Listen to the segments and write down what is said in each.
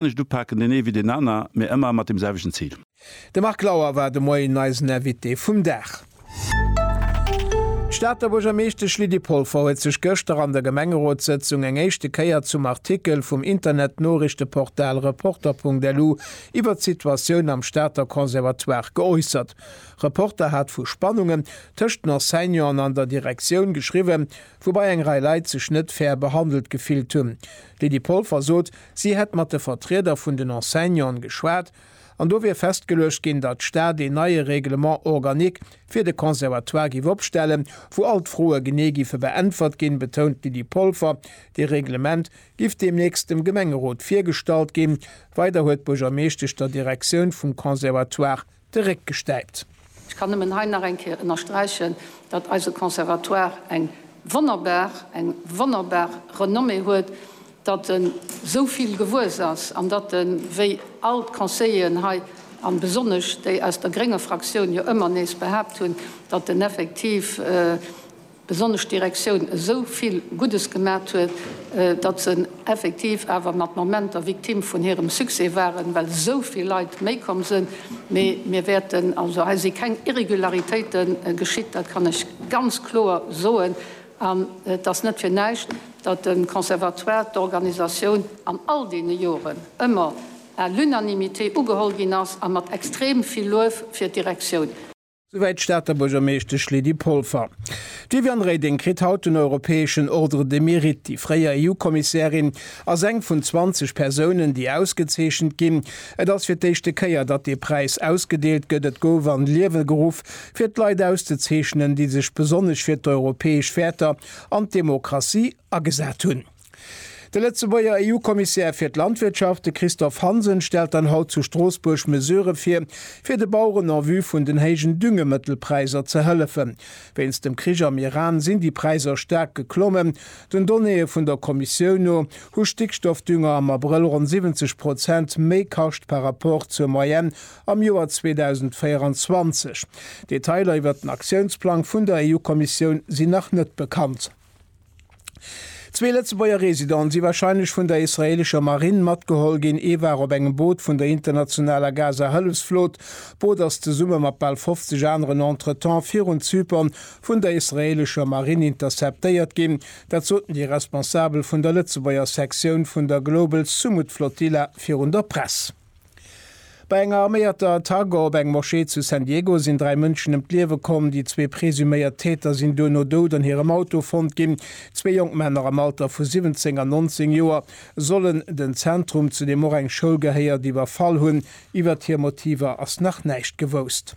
kann ech et upaken, deen ee wéi deen aner, mee ëmmer mat deem selwechten Zil. De Marc Lauer war de Moien eisen Invité vum Dag. D'Stater Buergermeeschtesch Lydie Polfer huet sech gëschter an der Gemengerotssëtzung eng éischte Kéier zum Artikel vum Internetnoriichteportal Reporter.lu iwwert d'Situatioun am Stater Conservatoire geäussert. Reporter hat vu Spannungen tëscht den Enseignanten an der Direktioun geschriwwen, woubai eng Rei Leit sech net fair behandelt gefillt hunn. D'Lydie Polfer sot, Si hätt mat de Vertrieder vun den Enseignanten geschwat an do wier festgeluecht ginn, datt d'Stad een neie Règlement organique fir de Conservatoire géif opstellen, wou all d'Froe genee géife beäntwert ginn, betount d'Lydie Polfer. Dee Reglement géif deemnächst dem Gemengerot virgestallt ginn. Weider huet d'Buergermeeschtesch der Direktioun vum Conservatoire de Réck gestäipt. Ech kann nëmmen hei nach eng Kéier ënnersträichen, datt eise Conservatoire eng wonnerbar, eng wonnerbar Renommée huet, datt en esou vill gewuess ass an datt en, wéi all d'Conseilleren hei an besonnesch déi aus der grénger Fraktioun jo ëmmer nees behaapt hunn, datt en effektiv, besonnesch d'Direktioun esou vill Guddes gemat huet, datt se effektiv awer mat Momenter Victime vun hirem Succès waren, well esou vill Leit méi komm sinn. Mee mir wäerten, also hei si keng Irregularitéite geschitt, dat kann ech ganz kloer soen. An et ass net fir näischt, datt de Conservatoire, d'Organisatioun an all deene Joren ëmmer à l'unanimité ugeholl ginn ass a mat extrem vill Luef fir d'Direktioun. Souwäit d'Stater Buergermeeschtesch Lydie Polfer. D'Viviane Reding kritt haut den europäeschen Ordre de Mérite. Déi fréier EU-Kommissärin ass eng vun 20 Persounen, déi ausgezeechent ginn. Et ass fir d'éischte Kéier, datt dee Präis ausgedeelt gëtt. Et gouf an d'Liewe geruff, fir d'Leit auszezeechnen, déi sech besonnesch fir d'europäesch Wäerter an d'Demokratie agesat hunn. De Lëtzebuerger EU-Kommissär fir d'Landwirtschaft, de Christophe Hansen, stellt dann haut zu Stroossbuerg Mesurë vir, fir de Baueren en vue vun den héijen Düngemëttelpräisser ze hëllefen. Wéinst dem Krich am Iran sinn déi Präisser staark geklommen. Den Donnéeë vun der Kommissioun no hu Stickstoffdünger am Abrëll ronn 70 Prozent méi kascht par Rapport zur Moyenne am Joer 2024. Detailer iwwert den Aktiounsplang vun der EU-Kommissioun sinn nach net bekannt. Zwee Lëtzebuerger Residenten si warscheinlech vun der israeelescher Marinn matgeholl ginn. Ee war op engem Boot vun der internationaler Gaza-Hëllefsflot. D'Boot ass zesumme mat bal 50 aneren entretemps virun Zypern vun der israeelescher Marinn interceptéiert ginn. Dat soten déi Responsabel vun der Lëtzebuerger Sektioun vun der Global Sumud Flotilla virun der Press. Bei enger arméierter Attack op eng Moschee zu San Diego sinn dräi Mënschen ëm d'Liewe komm. Déi zwee presuméiert Täter sinn duerno dout an hirem Auto fonnt ginn. Zwee jonk Männer am Alter vu 17 an 19 Joer sollen den Zentrum, zu deem och eng Schoul gehéiert, iwwerfall hunn. Iwwert hir Motiver ass nach näischt gewousst.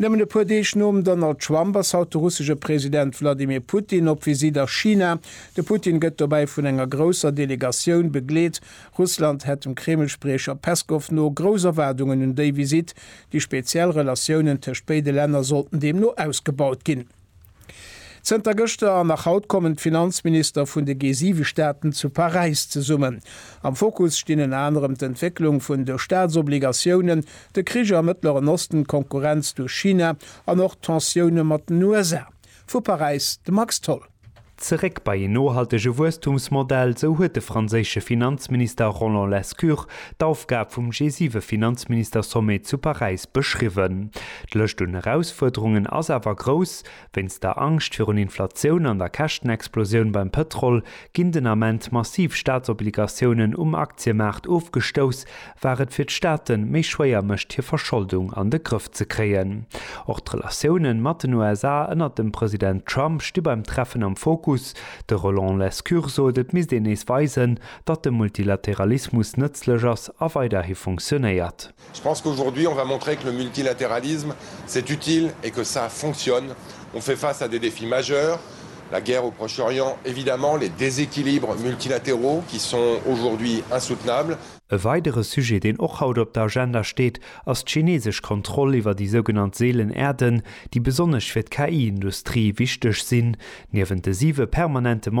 Nëmmen e puer Deeg nom Donald Trump ass haut de russesche President Wladimir Putin op Visitt a China. De Putin gëtt dobäi vun enger grousser Delegatioun begleet. Russland hätt dem Kreml-Spriecher Peskow no grouss Erwaardungen un déi Visitt. Déi speziell Relatiounen tëscht béide Länner sollten deemno ausgebaut ginn. Zënter gëschter an nach haut kommen d'Finanzminister vun de G7-Staaten zu Paräis zesummen. Am Fokus stinn ënner anerem d'Entwécklung vun de Staatsobligatiounen, de Krich am Mëttleren Osten, d'Konkurrenz duerch China an och d'Tensioune mat den USA. Vu Paräis de Max Tholl. Zeréck bei een nohaltege Wuesstumsmodell, esou huet de franséische Finanzminister Roland Lescure d'Aufgab vum G7-Finanzministersommet zu Paräis beschriwwen. D'Lëscht un Erausfuerderungen ass awer grouss. Wéinst der Angscht virun Inflatioun an der Käschtenexplosioun beim Pëtrol ginn den Ament massiv Staatsobligatiounen um Aktiemaart ofgestouss, war et fir d'Staate méi schwéier mécht hir Verscholdung an de Grëff ze kréien. Och d'Relatioune mat den USA ënnert dem President Trump sti beim Treffen am Fokus. De Roland Lescure sot, et misst een nees weisen, datt de Multilateralismus nëtzlech ass a weiderhi funktionéiert. Je pense qu'aujourd'hui on va montrer que le multilatéralisme c'est utile et que ça fonctionne. On fait face à des défis majeurs, la guerre au Proche-Orient évidemment, les déséquilibres multilatéraux qui sont aujourd'hui insoutenables. E weidere Sujet, deen och haut op der Agenda steet, ass d'chinesesch Kontroll iwwer déi sougenannt seelen Äerden, déi besonnesch fir d'KI-Industrie wichteg sinn. Niewent de siwe permanente Member